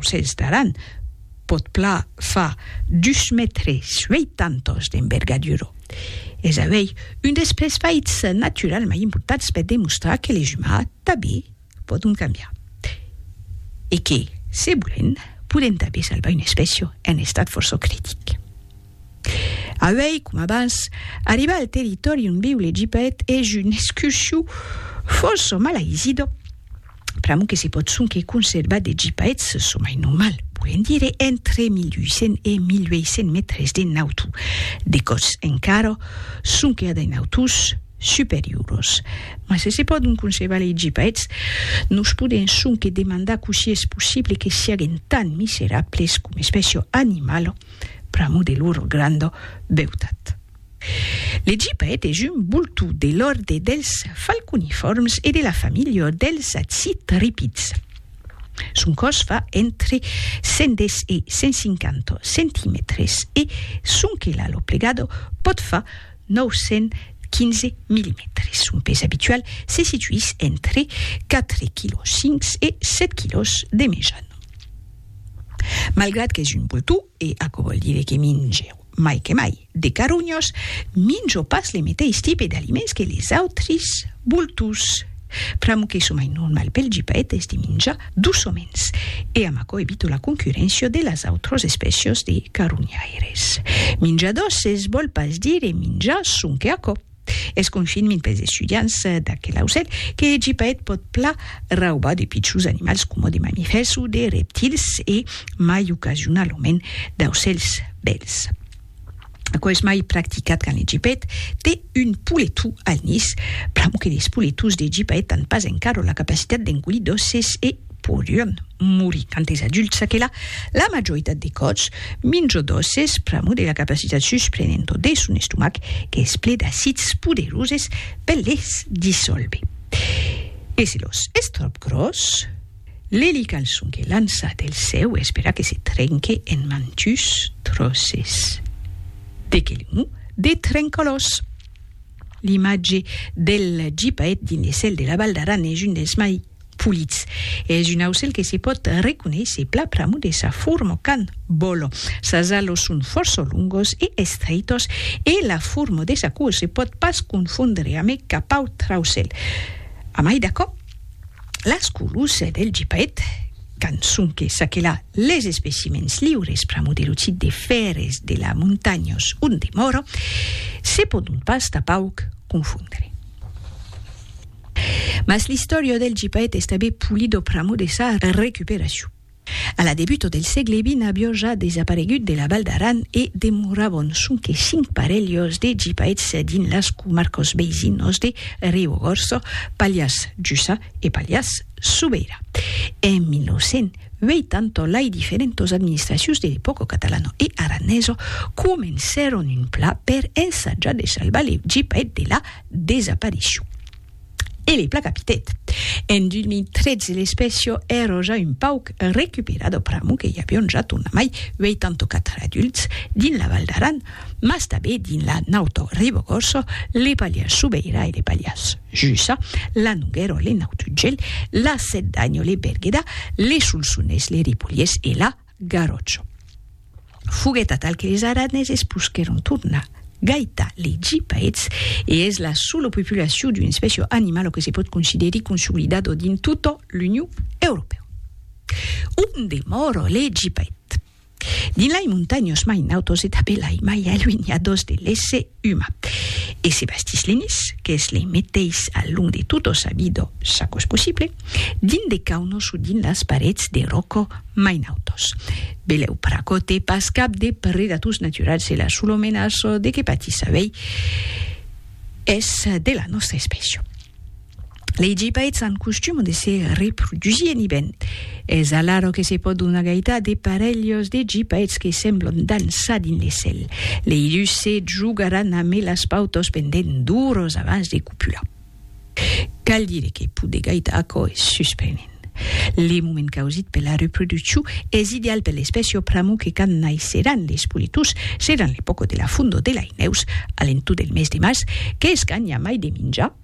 Sens d'Aran pòt pla far dus mètres ueitantos d'envergadura. Es avei un des pes faits naturals mai importants per demostrar que les umans tanben pòdon cambiar e que, se volèm, podèm tanben salvar una espècia en estat fòrça critic. Avei, com abans, arribar al territòri on viu le Gipet es un escurciu fòrça mal aisido, pr'amor que se pòt sonque conservar de Gipets, çò mai normal, volent dire entre 1800 e 1800 mètres de nautu, de còts encara sonque a de nautus superioros. Mas se se pòdon conservar lei Gipets, nos podèm sonque demandar cossí es possible que siaguen tan miserables com espècia animala, pr'amo de lor granda beutat. L'Egipa etes un boltó de l'òrde dels falconifòrms e de la familha dels citripids. Son còs fa entre 110 e 150 centimètres e son quelalo plegado pòt far 915 milimètres. Son pes abitual se situís entre 4 quilòs 5 e 7 quilòs de mejan. Malgrat qu'es un bultó, e aquò vòl dire que minge mai que mai de carunhos, minjo pas le meteis tipe d'aliments que les autris bultós. Pr'amor que çò mai normal pel gipaet es de minjar doçaments, e amb aquò evito la concurréncia de las autras espècias de carunhaires. Minjar doces vòl pas dire minjar sonque aquò. Es confinment pels estudiants d'aquel aucèl que hègi paet pòt pla raubar de pichons animals coma de mamifèrs o de reptils e mai ocasionalament d'aucèls bèls. Aquò es mai practicat quand hègi paet te un poletou al nis, pr'amor que les poletous d'hègi paet an pas encara la capacitat d'engolir d'òsses e Podion morir tantes adults a que la la majoritat de còps minjo dòses pr'amo de la capacitat susprenento de son estomac qu'es ple d'acids poderoses per les dissolver. E se los es tròp gròs? L'elical son que lança del cèu espera que se trenque en mantus tròces. De que l'emò de Trencolòs. L'imatge del gipaet dins le cèl de la Val d'Aran es un dels mai Pulits. Es un aucèl que se pòt reconéisser pla pr'amor de sa forma quand vòla. Sas alos son fòrça longos e estreitos e la forma de sa coa se pòt pas confondre amé cap autre aucèl. Amai d'aquò, las colors del gepaet, quand sonque s'aquela les especimèns liures pr'amor de lo tip de fères de la montanhas ont demòra, se pòdon pas tapauc confondre. Mas l'istòria del gipaet es tanben Pulido pr'amor de sa recuperacion. A la debuta del sègle vint avió ja desaparegut de la Val d'Aran e demorabon sonque cinc parelhos de gipaets dins las comarcas veisinas de Riogorça, Pallars Jussà e Pallars Sobeira. En 1980 lai diferentas administracions de l'epòca catalana e aranesa comencèron un plan per ensajar de salvar le gipaet de la desaparisciu. E le placapitet. En 2013 l'espècia èra ja un pauc recuperada pr'amor que i avion ja tornamai 84 adults dins la Val d'Aran, mas tanben dins la nauta Ribagòrça, le Pallars Sobeira e le Pallars Jussà, la Noguèra, le Naut Ugèl, la Sèt d'Anha, le Berguedà, le Solsonés, le Ripolhés e la Garòcho. Foguèt atal que es araneses posquèron tornar gaitar lei gipaets e es la sola populacion d'una espècia animala que se pòt considerir consolidada dins tota l'Union Europèa. On demòra lei gipaets? Dins lei montanhas mai nautas e tanben lei mai aluenhadas de l'Esse. Uma. E se bastís l'enis, qu'es lei meteis al long de tota sa vida, ça cos possible, dins de caunos o dins las parets de ròco mai nautos. Belèu pracòte, pas cap de predators naturals e la sola menaça de que patís avei es de la nòstra espècia. Lei gibèits an costum de se reprodusir en ibèn. Es alara que se pòdon agaitar de parelhos de gibèits que semblon dançar dins le cèl. Lei dus se jogaràn amé las pautas pendent d'oras abans de copular. Cal dire que poder gaitar aquò es susprenent. Le moment causit per la reproduccion es ideal per l'espècia au pramo que quand naisseràn les politons seràn l'epòca de la fondor de lei nèus, a l'entorn del mes de març, qu'es quand i a mai de minjar.